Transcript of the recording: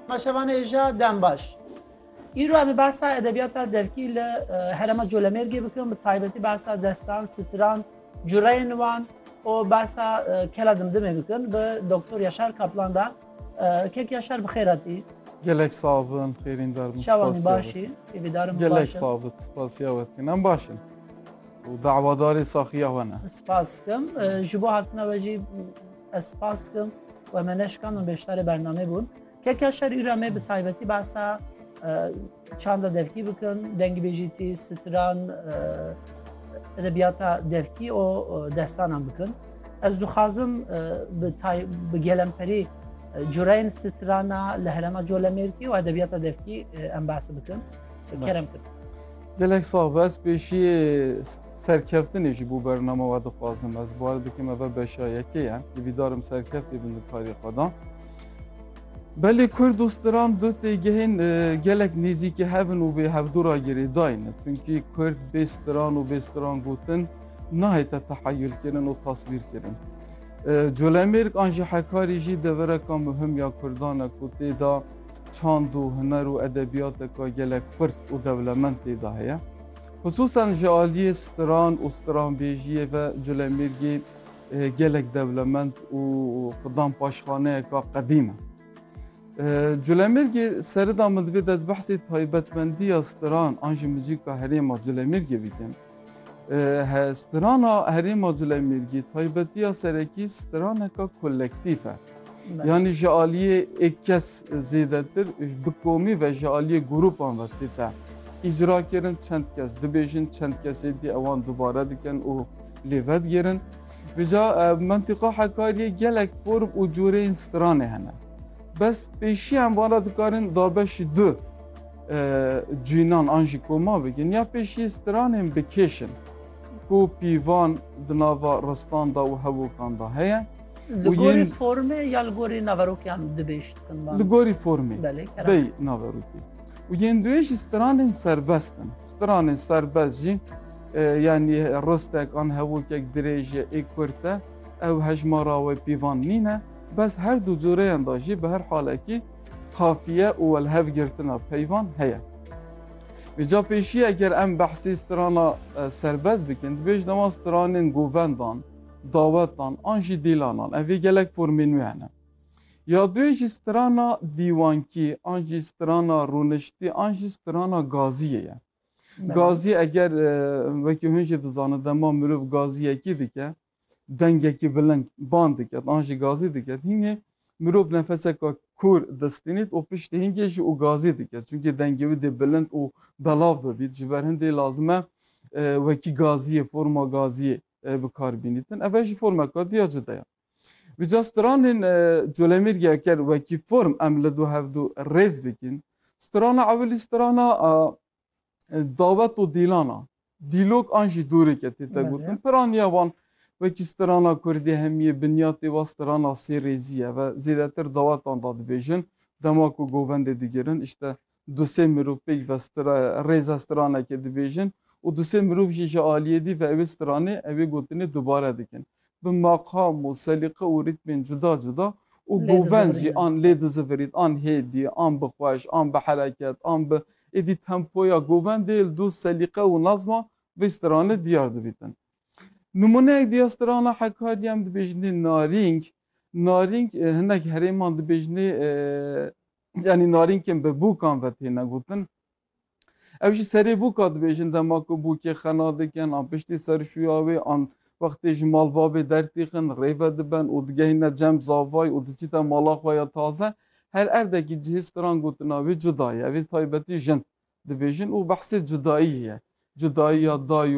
Ma şevanê îja dem baş. Îro em ê behsa edebiyata devkî li herema Colemêrgê bikin, bi taybetî behsa destan, stran, cureyên wan û behsa kela dimdimê bikin bi Doktor Yaşar Kaplan da. Kek Yaşar bi xêr hatî. Gelek sağ bin, xêrîn dar bin. Şevanî başî, hêvîdarim başin. Gelek sağ bin, spasiya we dikin. Em başin. û dawadarê saxiya we ne. Spas dikim. Ji bo hatina we jî Ez spas dikim we me neşkandin beşdarê bernamê bûn. Keka şer îra me bi taybetî basa çanda devkî bikin, dengî bêjîtî, stran, edebiyata devkî û destanan bikin. Ez dixwazim bi gelemperî cureyên strana li herema colemêrkî û edebiyata devkî em basi bikin. Kerem kir. Gelek sağ bes pêşiyê Serkeftinê jî bû bername we dixwazim ez bari dikim eve beşa yekê ye hîvîdarim serkeftê bin di karê xwe de. Belê Kurd û Stram du têgehên gelek nêzîkî hev in û vê hevdûra girêdayî ne. Çunkî Kurd bê stran û bê stran gotin nahête teheyûlkirin û taswîrkirin. Colemêrg an jî Hekarî jî devereka muhim ya Kurdan e ku tê de çand û huner û edebiyateka gelek xurt û dewlemend tê de heye. Xisûsan ji aliyê stran û stranbêjiyê ve Colemêrgê gelek dewlemend û xidan paşxaneyeka qedîm e. Colemêrgê serida min divê dest behsê taybetmendiya stran an jî muzîka herêma Colemêrgê bikim. Strana herêma Colemêrgê taybetiya serekî straneka kolektîf e. Yanî ji aliyê êk kes zêdetir bi komî ve ji aliyê grûpan ve tê te îcrakirin çend kes dibêjin çend kesê dî ewan dubare dikin û lê vedigêrin. Vêca mentiqa hekariyê gelek form û coreyên stranê hene. Bes pêşî em van re dikarin dabeşî du cînan an jî koma bikin ya pêşî stranên bikêşin. Ku pîvan di nava ristan da û hevokan da heye. Li gorî formê ya li gorî naverokiyan dibêj dikin Li gorî formê bey naverokî. û yên duê jî stranên serbest in. Stranên serbest jî e, yanî rostek an hevokek dirêj e ê kurt e ew hejmara wê pîvan nîne bes her du coreyan da jî bi her halekî kafiye û welhevgirtina peyvan heye. Vêca pêşî eger em behsî strana e, serbest bikin, dibêjin ewan stranên govendan Dawetan an jî dîlanan ev ê gelek formên wê hene. Ya duê jî strana dîwankî an jî strana rûniştî an jî strana gaziyê ye. Gazî eger wekî hûn jî dizanin dema mirov gaziyekî dike dengekî bilind ban diket an jî gazî diket hîngê mirov nefeseka kûr distînît û piştî hîngê jî û gazî diket çunkî dengê wî dê bilind û belav bibît ji ber hindê lazim e wekî gaziyê forma gaziyê bikar bînîtin. Ev jî formeka diya cuda ye. Bi ca stranên colemêrgê ker wekî form em li du hev du rêz bikin. Strana ewilî strana dawet û dîlana. Dîlok an jî dûrêk e tê te gotin. Piraniya wan wekî strana kurdî hemiyê binyatê wa strana sê rêzî ye ve zêdetir dawetan da dibêjin. Dema ku govendê digirin îşte Du sê mirov pêk ve stra rêza stranekê dibêjin û du sê mirov jî ji aliyê dî ve ewê stranê ewê gotinê dubare dikin. Bi maqam û selîqe û rîtmên cuda cuda û Lê govend jî dizivirînin. an lê dizivirîn an hêdî, an bi xweş, an bi hereket, an bi êdî tempoya govendê li du selîqe û nazma vê stranê diyar dibîtin. Nimûneyek dî ya strana Hekariyê em dibêjinê Narîng. Narîng hinek herêman dibêjinê Yanî narînkên bi bûkan ve têne gotin. Ev jî serê bûka dibêjin dema ku bûkê xena dikin an piştî ser şûya wê an wextê ji malbabê dertîxin rêve diben û digehîne cem zavay û diçîte mala xwe ya taze. Her erdekî cihê stran gotina wê cuda ye. Ev ê taybetî jin dibêjin û behsê cudayî ye. Cudayî ya dayî